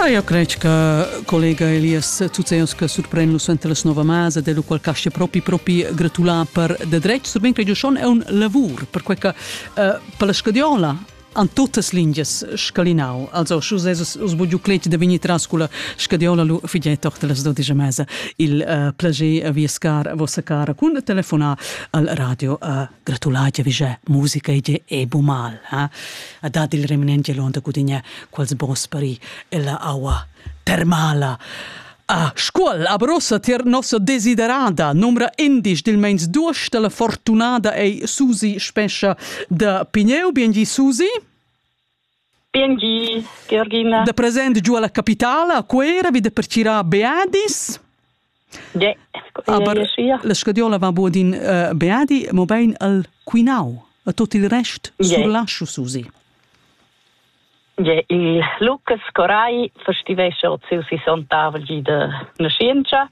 Ah, io credo che collega Elias Tuzeus che surprende nus ante la nuova masa, del qual casce propri propri gratulà per de dretg, so ben che io schon è un lavor, perché che uh, per la scadiola an totas lingias scalinau. Also, schus esos usbugiu clec da vini tras cu la scadiola lu figei tochter las dodigia mesa. Il uh, plager via scar vossa cara cun telefonà al radio uh, gratular che vige musica e e bu mal ha a dat il reminente l'onda cudinha quals bosperi e la aua termala A Scuol abrosa tier nossa desiderada nomra indisch dil meins duos della fortunada ei Susi Spescha da Pigneu, bien gi Susi? Biengi, Georgina. Da present giu alla capitala a Cuera vi da percirar Beadis. Ja, aber la scadiola va buo din uh, Beadi, mo bein al Quinau, a tot il rest yeah. surlascio susi. Ja, il Lucas Corai festivesce od si son tavel gi de nascienza.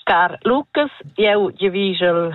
Car Lucas, eu je vigel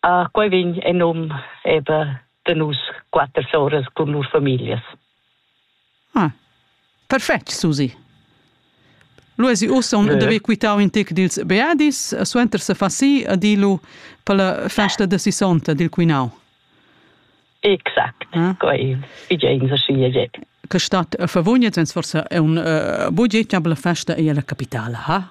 Ah, quei vegn en num eben de nus quatter soras cun lur familias. Ah, perfetg, Susi. Lu esi ussa un de quitau in tec dils beadis, suenter se fa si a dilu per la festa de sissonta dil quinau. Exact, ah? quei figein sa scia jett. Che stat a favugnet, sens forse è un uh, bugettabla festa e la capitala, ha?